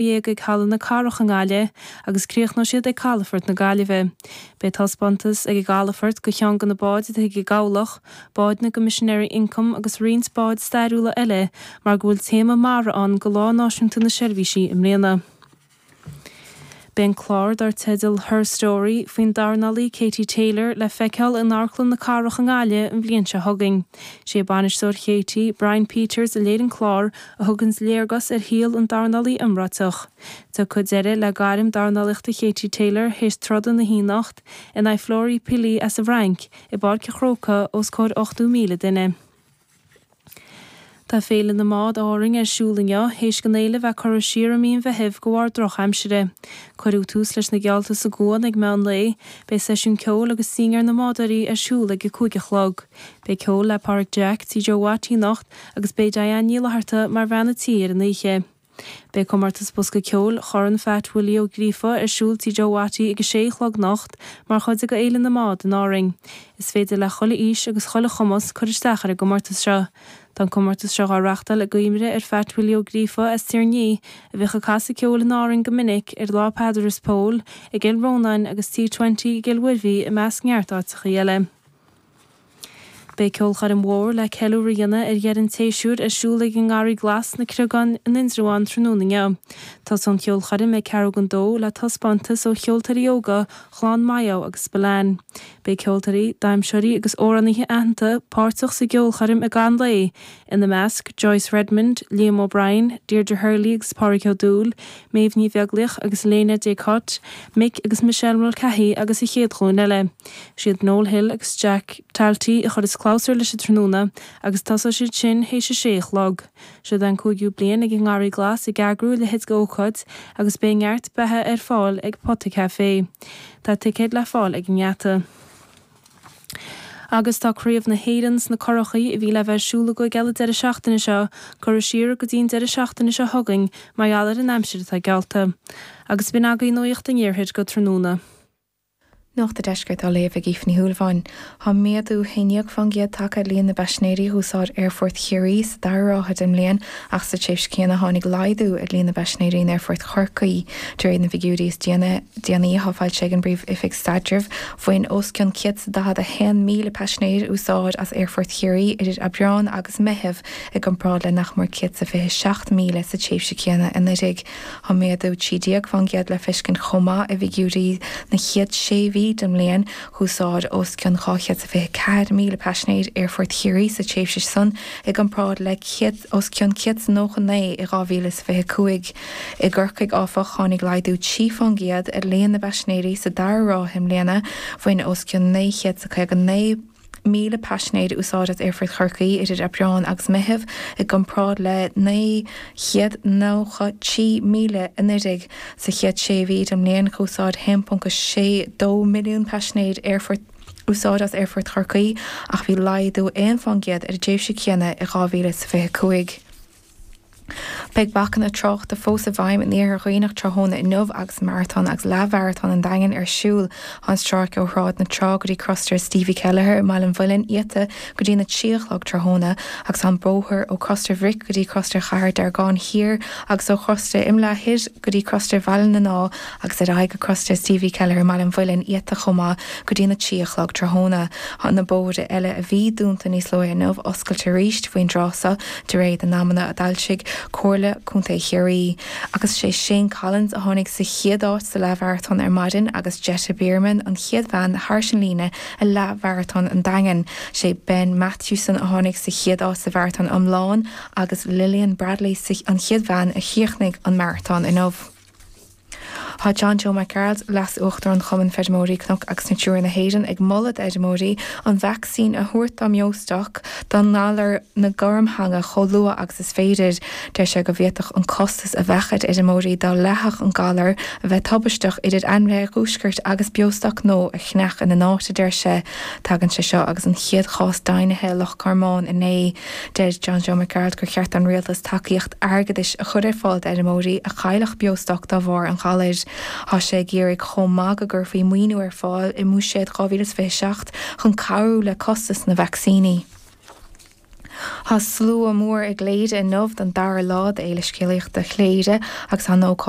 dhéag ag Halla na Cathrach i nGaillimh agus críochnóidh siad ag Calafort na Gaillimhe. Beidh taispeántas ag an gCalafort go cheann go na báid atá ag an gCabhlach, báid na gCoimisinéirí Ioncaim agus roinnt báid stairiúla eile mar go bhfuil téama mara ann go Lá Náisiúnta na Seirbhísí i mbliana. Beidh an clár dar teideal Her Story faoin dornálaí Katie Taylor le feiceáil in Amharclann na Cathrach i nGaillimh an bhliain seo chugainn. Sé bainisteoir Katie, Brian Peters a léirigh an clár a thuganns léargas ar shaol an dornálaí iomráiteach. Tiocfaidh deireadh le gairm dornálaíochta Katie Taylor théis troda na hoíche anocht in aghaidh Flora Pili as an bhFrainc i bPáirc a' Chrócaigh os comhair 80,000 duine. Tá Féile na mBád Árainn ar siúl inniu théis an fhéile bheith curtha siar i mí an Mheithimh de bharr drochaimsire. Cuireadh tús leis na geallta sa gCuan ag meán lae. Beidh seisiún ceoil agus dinnéar na mbádóirí ar siúl ag a cúig a chlog. Beidh ceol le Pádraig Jack Tí Joe Watty anocht. Agus beidh Diane Ní Fhlatharta mar bhean a tí ar an oíche. Beidh comórtas bosca ceoil Chorn Pheait Willie Ó Gríofa ar siúl Tí Joe Watty ag a sé a chlog anocht mar chuid de Fhéile na mBád in Árainn. Is féidir le chuile aois agus chuile chumas cur isteach ar an gcomórtas seo. Tá an comórtas seo dhá reachtáil i gcuimhne ar Pheait Willie Ó Gríofa as Tír an Fhia a bhíodh ag casadh ceoil in Árainn go minic ar Lá Peadar is Pól i gCill Rónáin agus Tí Twenty i gCill Mhuirbhigh i measc neart áiteachaí eile. Beidh ceolchoirm mhór le ceiliúradh a dhéanamh ar dheireadh an tséasúir ar siúl ag an nGarraí Glas sna Creagáin in Indreabhán tráthnóna inniu. Tosóidh an cheolchoirm ag ceathrú don dó le taispeántas ó cheoltóirí óga Chlann Mayo agus Spillane. Beidh ceoltóirí, damhsóirí agus amhránaithe aitheanta páirteach sa gceolchoirm i gcaitheamh an lae ina measc, Joyce Redmond, Liam O'Brien, Deirdre Hurley agus Pádraig Ó Dubhghaill, Méabh Ní Bheaglaoich agus Léna Dé Cote, Mick agus Michelle Mulcahy agus an chéad ghlúin eile. Is iad Noel Hill agus Jack Talty a chuireas clabhsúr leis an tráthnóna agus tosóidh siad sin théis a sé a chlog. Seo'd é an cúigiú bliain ag an nGarraí Glas ag eagrú a leithéid d'ócáid agus beidh neart beatha ar fáil ag Pota Café. Tá ticéid le fáil ag an ngeata. Agus tá Craobh na hÉireann sna curachaí a bhí le bheith ar siúl againn eile deireadh seachtaine seo curtha siar go dtí an deireadh seachtaine seo chugainn mar gheall ar an aimsir atá geallta. Agus b'in agaibh nuacht an Iarthair go tráthnóna. Nuacht a' Deiscirt á léamh ag Aoife Ní Shúilleabháin. Tá méadú 11% tagtha ar líon na bpaisinéirí a dh'úsáid Aerfort Chiarraí sa dara ráithe den mbliain ach sa tréimhse céanna tháinig laghdú ar líon na bpaisinéirí in Aerfort Chorcaí. De réir na bhfigiúirí is déanaí atá foilsithe ag an bPríomh-Oifig Staidrimh, Bhain os cionn 141,000 paisinéir úsáid as Aerfort Chiarraí idir Aibreán agus Meitheamh, i gcomparáid le nach mór 127,000 sa tréimhse chéanna anuraidh. Tá méadú 13% le feiscint chomh maith i bhfigiúirí na chéad sé mhí den mbliain. D'úsáid os cionn 224,000 paisinéir Aerfort Chiarraí sa tréimhse san, i gcomparáid le os cionn 199 i 2025. I gCorcaigh, áfach, tháinig laghdú 3 fán gcéad ar líon na bpaisinéirí sa dara ráithe i mbliana, bhain os cionn 959,000 paisinéir úsáid as Aerfort Chorcaí idir Aibreán agus Meitheamh i gcomparáid le 993,000 anuraidh. Sa chéad sé mhí den mbliain D'úsáid 1.62 milliún paisinéir aerfort úsáid as Aerfort Chorcaí ach bhí laghdú 1 fán gcéad ar an dtréimhse céanna i 2025. Beidh bacanna tráchta fós i bhfeidhm in Iarthar Dhuibhneach tráthnóna inniu agus Maratón agus Leathmharatón an Daingin ar siúl. Tá an stráice ó Shráid na Trá go dtí Crosaire Stevie Kelleher i mBaile an Mhuilinn iata go dtí na trí a chlog tráthnóna agus tá an bóthar ó Chrosaire Bhric go dtí Crosaire Chathair Deargáin Thiar agus ó Chrosaire Imileá Thoir go dtí Crosaire Bhaile na agus ar aghaidh go Crosaire Stevie Kelleher i mBaile an Mhuilinn iata chomh maith go dtí na trí a chlog tráthnóna. Tá na bóithre eile a bhí dúnta níos luaithe inniu oscailte arís faoin dtráth so de réir na n-amanna a d'fhoilsigh Comhairle Contae Chiarraí. Agus is é Shane Collins a tháinig sa chéad áit sa leath-mharatón ar maidin agus Jetta Bierman an chéad bhean thairis an líne i leath-mharatón an Daingin. Is é Ben Mathewson a tháinig sa chéad áit sa mharatón iomlán agus Lilian Bradley an chéad bhean a chríochnaigh an maratón inniu. Tá John Joe Mac Gearailt, Leas Uachtarán Chumann Feirmeoirí Cnoc agus Natura na hÉireann ag moladh d'fheirmeoirí an vacsaín a thabhairt dá mbeostoc don ngalar na gormtheanga chomh luath agus is féidir. Deir sé go bhféadfadh an costas a bheadh ar fheirmeoirí dá leathfadh an galar a bheith tubaisteach idir ainmhithe a dhiúscairt agus beostoc nua a cheannach ina n-áit a deir sé. Tagann sé seo agus an chéad chás deimhnithe i Loch Garmán inné. Deir John Joe Mac Gearailt gur cheart don Rialtas tacaíocht airgeadais a chur ar fáil d'fheirmeoirí a chaillfeadh beostoc dá bharr an ghalair. Tá sé ag iarraidh chomh maith go gcuirfí maoiniú ar fáil i mBuiséad 2027 chun cabhrú le costas na vacsaíní. Tá slua mór i gCléire inniu don dara lá d'Fhéile Scéalaíochta Chléire agus tá an ócáid.